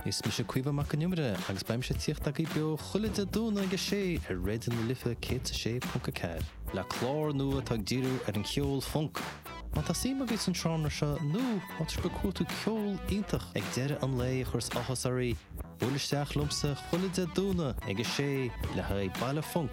Is mise Caoimhe Mac an Iomaire agus beidh mise ag tíocht agaibh beo chuile Dé Domhnaigh ag a sé ar Raidio na Life 106.4, le clár nua atá ag díriú ar an cheol func. Má tá suim agaibh sa seánra seo nó má tá sibh ag cuartú ceol iontach ag deireadh an lae a chuireas áthas oraibh, buail isteach liomsa chuile Dé Domhnaigh ag a sé le haghaidh Baile Func.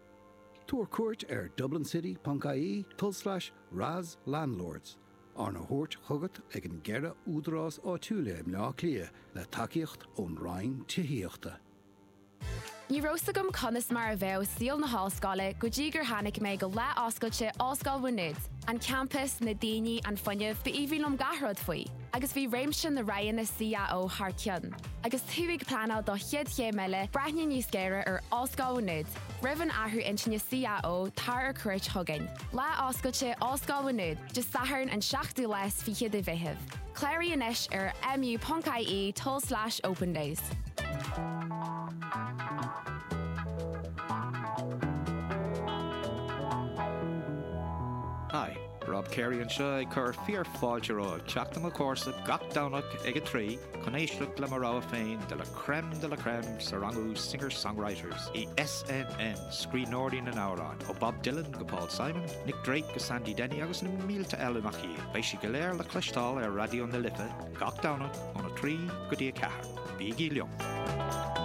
Tabhair cuairt ar dublincity.ie tulslais RAS Landlords, arna thabhairt chugat ag an gceithre údarás áitiúil i mBleá Cliath le tacaíocht ón Roinn Tithíochta. Ní raibh 's agam conas mar a bheadh saol na hollscoile go dtí gur tháinig mé go Lá Oscailte Ollscoil Mhá Nuad. An campas, na daoine, an fuinneamh, b'aoibhinn liom gach rud faoi. agus bhí réimse na roghanna CAO thar cionn. Agus tú ag pleanáil do chéad chéim eile, breathnaigh níos géire ar Ollscoil Mhá Nuad. Roimh an athrú intinne CAO, tar ar cuairt chugainn. Lá Oscailte Ollscoil Mhá Nuad, Dé Sathairn an 7ú lá is fiche de Mheitheamh. Cláraigh anois ar mu.ie tulslais opendays. Hi. Rob Carey anseo ag cur fíor fáilte romhaibh teacht i mo chomhairse gach Domhnach ag a trí chun éisteacht le mo rogha féin de la crème de la crème sa rangú Singer Songwriters in SNN, Scríbhneoirí na nAmhrán, ó Bob Dylan go Paul Simon, Nick Drake go Sandy Denny agus na mílte eile nach iad. Beidh siad go léir le cloisteáil ar Raidió na Life gach Domhnach óna trí go dtí a ceathair. Bígí liom!